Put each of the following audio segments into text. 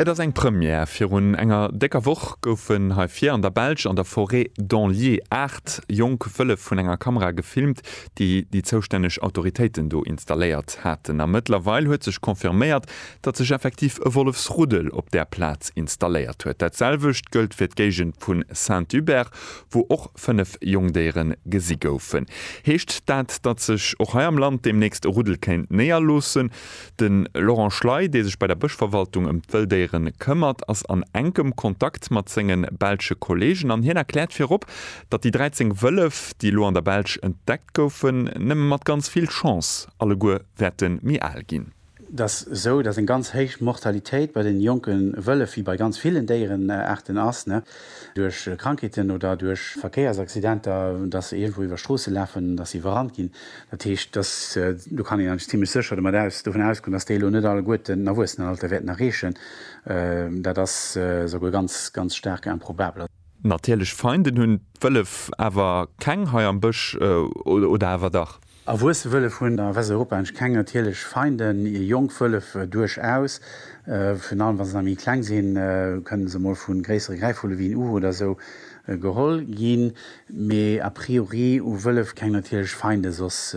Et ass eng Première, Virun enger décker Woch goufen hei vir an der Belsch an der Forêt d'Anlier aacht jonk Wëllef vun enger Kamera gefilmt, déi déi zoustänneg Autoritéiten do installéiert haten. A mëttlerweil huet sech confirméiert, datt sech effektiv e Wollefsruddel op där Plaz installéiert huet. Dat selwecht gëllt fir d'Géigend vu Saint-Hubert, wou och fënnef Jongdéiere gesi goufen. Heescht dat, datt sech och hei am Land deemnächst e Ruddel kéint néierloossen? De Laurent Schley, dee sech bei der Bëschverwaltung ëm d'Wëlldéiere këmmert, ass an enkem Kontakt mat senge belsche Kolleegen an hien erkläert virop, datt déi 13 Wëllef, déi elo an der Belsch entdeckt goufen, nëmme mat ganz vill Chance alleguer wäerte méi al ginn. Et ass esou, datt eng ganz héich Mortalitéit bei de jonke Wëllef, wéi bei ganz villen Déierenaarten ass. duerch Krankheeten oder duerch Verkéiersaccidenter, dass se iergendwou iwwer Stroosse lafen, dass se iwwerrannt ginn. Dat heescht, dass, do kann een eigentlech zimlech sécher domat aus, dovun ausgoen, dass déi elo net alleguerten den Erwuessenenalter wäerten erreechen. Dat ass souguer ganz, ganz staark improbabel. Natierlech Feinden hunn d'Wëllef awer keng hei am Bësch, oder awer dach? Erwuesse Wëllef hunn a Westeuropa engsch keng natierlech Feinden. Jonk Wëllef duerchaus, virun allem wa se nach méi kleng sinn, kënnen se mol vu gréissere Gräifvulle wéi en Uhu oder esou geholl ginn. Mee a priori hu Wëllef keng natierlech Feinde soss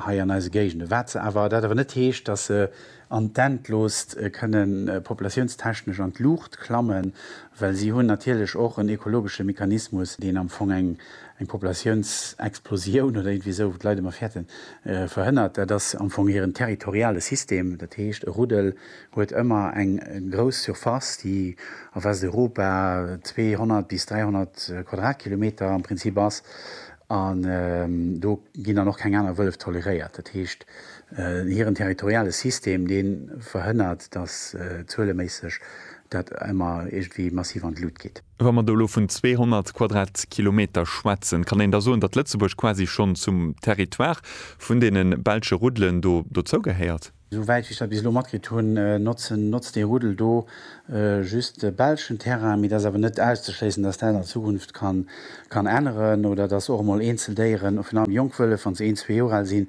hei an eise Géigende. Wat se awer, dat awer net heescht, dass se an d'Endloost kënne populatiounstechnesch an d'Luucht klammen, well si hunn natierlech och en ekologesche Mechanismus, deen am Fong eng Populatiounsexplosioun oder iergendwéi esou, wou d'Leit ëmmer fäerten, verhënnert. Dat ass am Fong hiren territoriale System. Dat heescht, e Ruddel huet ëmmer eng grouss Surface, déi a Westeuropa 200 bis 300 Quadratkilometer am Prinzip ass, An do ginn dann och keng aner Wëllef toleréiert. Dat heescht, hiren territoriale System, dee verhënnert, datt zueleméisseg dat ëmmer iergendwéi massiv an d'Lut geet. Wa mer do elo vun 200 Quadratkilometer schwätzen, kann een da soen, datt Lëtzebuerg quasi schonn zum Territoire vun deene belsche Ruddelen do dozougehéiert? Esou wäit wéi ech dat bis elo matkritt hunn, notzt dee Ruddel do just belschen Terrain, mee et ass awer net auszeschléissen, dass dat an Zukunft kann änneren oder dass och emol eenzel Déieren, virun allem jonk Wëllef, wann se een, zwee Joer al sinn,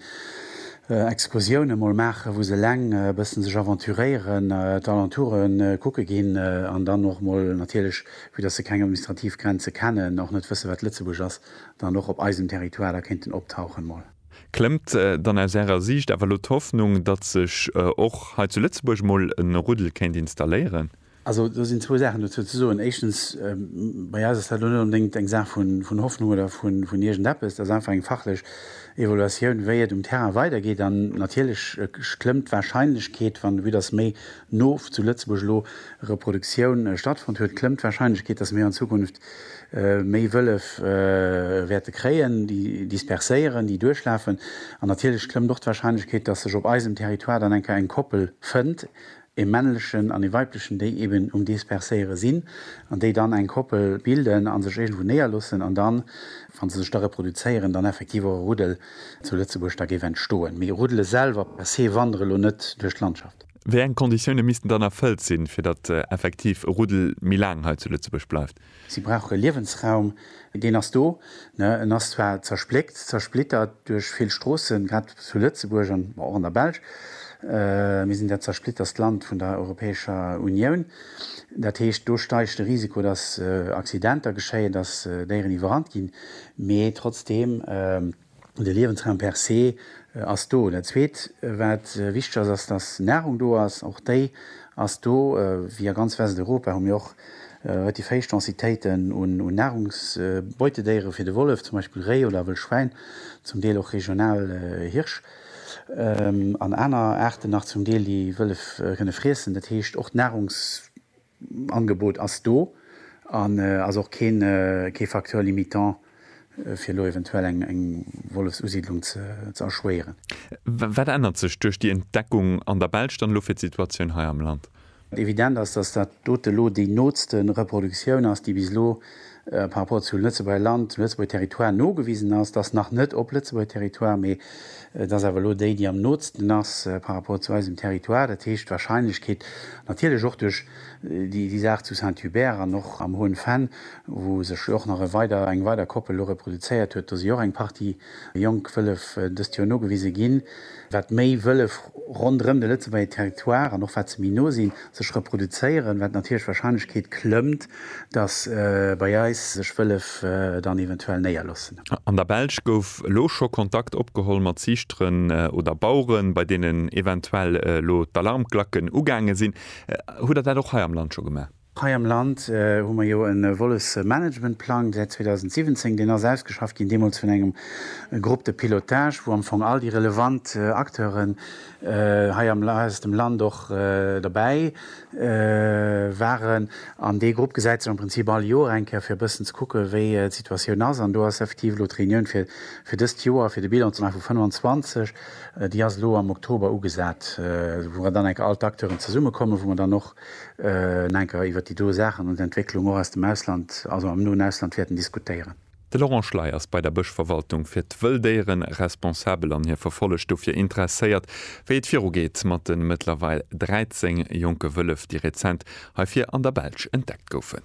Excursiounen emol maachen, wou se eleng e bëssen sech aventuréieren, d'Alentoure kucke ginn an dann och emol natierlech, vue dass se keng administrativ Grenze kennen, och net wëssen, wat Lëtzebuerg ass, dann och op eisem Territoire da kéinten optauchen mol. Klëmmt dann aus Ärer Siicht awer elo d'Hoffnung, datt sech och hei zu Lëtzebuerg emol e Ruddel kéint installéieren? Also do sinn zwou Saachen dozou ze soen. Éischtens, bei eis ass dat elo net onbedéngt eng Saach vun Hoffnung oder vun iergendeppes. Dat ass einfach eng fachlech Evaluatioun, wéi et um Terrain weidergeet. An natierlech klëmmt d'Warscheinlechkeet, wann de But ass, méi no zu Lëtzebuerg elo Reproduktioun stattfonnt huet, klëmmt d'Warscheinlechkeet, datt mir an Zukunft méi Wëllef wäerte kréien, déi disperséieren, déi duerchlafen an natierlech klëmmt och d'Warscheinlechkeet, dass sech op eisem Territoire dann eng Kéier eng Koppel fënnt, e männlechen an e weiblechen, déi eben um Disperséiere sinn an déi dann eng Koppel bilden a sech iergendwou néierloossen an dann, wa se sech da reproduzéieren, dann effektiv och e Ruddel zu Lëtzebuerg da géif entstoen. Mee Ruddele selwer per se wandere lo net duerch d'Landschaft. Wéi eng Konditioune missten dann erfëllt sinn, fir datt effektiv e Ruddel méi laang hei zu Lëtzebuerg bleift? Si brauche Liewensraum. Deen ass do. En ass zwar zerspléckt, zersplittert duerch vill Stroossen, grad zu Lëtzebuerg an och an der Belsch. Mir sinn dat zersplitterst Land vun der Europäescher Unioun. Dat heescht, do steigt de Risiko, datt Accidenter geschéien, datt Déieren iwwerrannt ginn. Mee trotzdeem. De Liewensraum per se ass do. Dat Zweet, wat wichteg ass, ass, dass Nahrung do ass. Och déi ass do. Wéi a ganz Westeuropa hu mir och relativ héich Densitéiten un Nahrungsbeutedéiere fir de Wollef, zum Beispill Réi oder Wëllschwäin, zum Deel och regional Hirsch an aner Aarten nach zum Deel, déi Wëllef kënne friessen. Dat heescht, och d'Nahrungs. D'Angebot ass do an ass och kee Facteur limitant, fir elo eventuell eng Wollefsusiddlung ze erschwéieren. Wat ännert sech duerch déi Entdeckung an der Belsch dann elo fir d'Situatioun hei am Land? Evident ass, dass dat dote elo déi nootste Reproduktioun ass, déi bis elo par rapport zum Lëtzebuerger Land, zum Lëtzebuerger Territoire nogewisen ass, dass nach net op Lëtzebuerger Territoire, mee et ass awer elo déi, déi am nootsten ass par rapport zu eisem Territoire. Dat heescht, d'Wahrscheinlechkeet, natierlech och duerch déi Saach zu Saint-Hubert an och am Hoen Venn, wou sech jo och nach e weider, eng weider Koppel elo reproduzéiert huet, do si och eng Partie jonk Wëllef dëst Joer nogewise ginn. wat méi Wëllef ronderëm de Lëtzebuerger Territoire, an och wat se méi no sinn, sech reproduzéieren, wat natierlech d'Warscheinlechkeet klëmmt, datt bei eis sech Wëllef dann eventuell néierloossen. An der Belsch gouf elo scho Kontakt opgeholl mat Ziichteren oder Baueren, bei deenen eventuell elo d'Alarmglacken ugaange sinn. Hutt Der dat och hei am Land scho gemaach? Hei am Land hu mer jo e Wollefsmanagementplang säit 2017. Deen ass ausgeschafft ginn, deemools vun engem Groupe de pilotage, wou am Fong all déi relevant Acteuren hei aus dem Land och derbäi waren. An dee Grupp gesäit sech am Prinzip all Joer eng Kéier, fir e bëssen ze kucke wéi d'Situatioun ass. An do ass effektiv elo d'Reunioun fir dëst Joer, fir de Bilan ze maache vu 25, déi ass elo am Oktober ugesat, wou dann enk all d'Acteuren zesummekommen, wou mer dann och en enker iwwert déi Ursachen an d'Entwécklung och aus dem Ausland, also am noen Ausland, wäerten diskutéieren. De Laurent Schley ass bei der Bëschverwaltung fir d'Wëlldéiere responsabel an hie verfollegt dofir interesséiert, wéi et virugeet mat de mëttlerweil 13 jonke Wëllef, déi rezent hei vir an der Belsch entdeckt goufen.